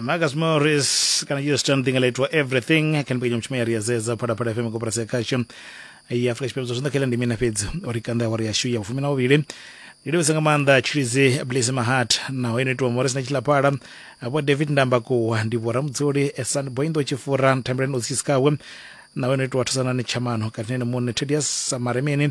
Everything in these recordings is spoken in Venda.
marcus morris kana us john thing alaitwa everything kani pekenya mutshuma ya ri ya zedza phalaphala fm koporasi ya khasho ya afrika tshipembe zwa zwinḓa khela ndi mina fhedzi uri kanda awari yashu ya vhufumi na vhuvhili ndi livhisa nga maanḓa tshilidzi blaze mahat naho ino itiwa morris na tshilaphala vho david ndambakuwa ndi vho ramudzuli esan boindo tshifura thambelani otsisikawe naho ino itiwa thusanani tshamano katinene muṋe tedias samaremeni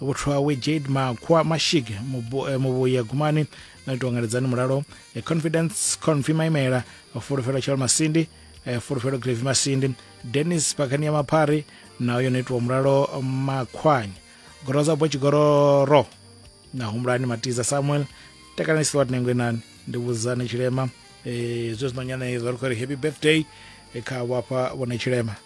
vhuthu hawe jade makhwa mashig eh, muvhuye gumani no itiwa ngaledzani mulalo eh, confidence confi maimela fulufhelo tshalo masindi eh, fulufhelo grevi masindi dennis pakani ya maphari nayo yo no itiwa mulalo makhwanya goroza bwa tshigororo na humbulani matiza samuel takalani silwat nengwe nani ndi vhudzani tshilema zwe zwino nyana izwa ri khou ri happy birthday kha vhafha vhone tshilema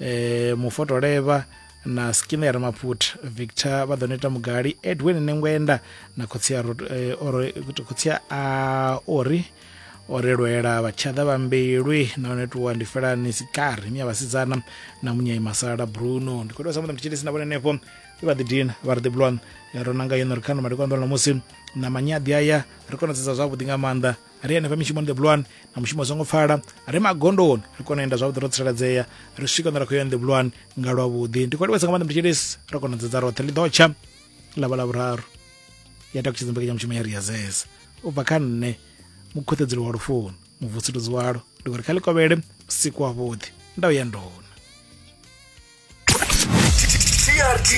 eh, mufotolevha na skin ya ramaput victor vha ḓo neta mugali edwin nengwenda na khotsi ya eh, ori khotsi ya a ori ore lwela vhatshada vha mbilwi nahone tuwa ndi felani sikari miya vhasidzana na munyai masala bruno ndi khou tea sa muḓa mutshitshilisi na vhone henefho i vha ḓidina vha ri ḓiblon ro nanga yone ri khano madikwanḓola musi na manyadi aya ri konadzedza zwavhuḓi nga maanḓa ri henefha mishumoni ḓebulwani na mushumo songo pfala ri magondoni ri kona u enda zwavhuḓi ro tsireledzea ri swika hune ra khou ya ḓebulwani nga lwavhuḓi ndi khou livhesa nga maanḓa mutshitshilisi ro kona u dzedza roṱhe ḽi ḓo tsha ḽavha ḽa vhuraru ya takutshedza mbekanyamushumo ya ri ya zeza u bva kha nṋe mukhuṱedzeli wa lufuno muvusuluzi walo ndi khou ri kha ḽi kovhele usiku wavhuḓi nda u ya ndona trt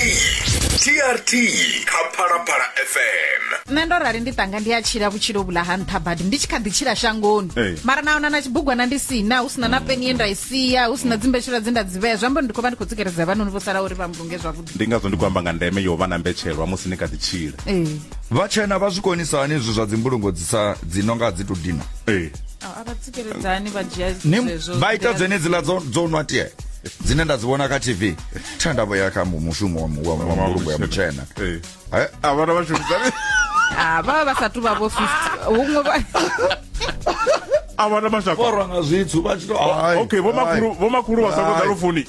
trt kha phalaphala fm nṋe ndo rali ndi tanga ndi a tshila vhutshilo vhula ha nṱha badi ndi tshi kha ḓi tshila shangoni Ee. mara naona na tshibugwana ndi sina hu sina na peni ye nda i sia hu sina dzimbetshela dze nda dzi vhea zwi amba uri ndi khou vha ndi khou tsikeledza vhanoni vho sala uri vha mbulunge zwavhuḓi ndi ngazwo ndi khou amba nga ndeme yo vha na mbetshelwa musi ni kha ḓi tshila ee vhatshena vha zwi konisa hani izwi zwa dzimbulungo dzi sa dzi no nga dzi to dina ee vha ita dzenedziḽa dzo nwa tie dzine nda dzi vhona kha tv tha nda vhoya kha mushumo wa mbulungo ya mutshena a vhana vha shumisani vha vha vha sathu vha vho 50 huṅwe vha a vhana mashaka borwa nga zwithu vha tshi to okay vho makhulu vho makhulu vha sa koḓa lufuni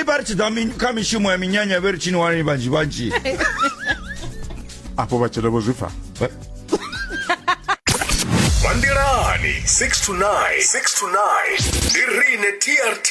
i vha ri tshi ḓa mi- kha mishumo ya minyanya vhe ri tshini wani vhanzhi vhanzhi afho vhatshelo vho zwi pfa Vha nḓilani 6 to 9 6 to 9 ndi rine TRT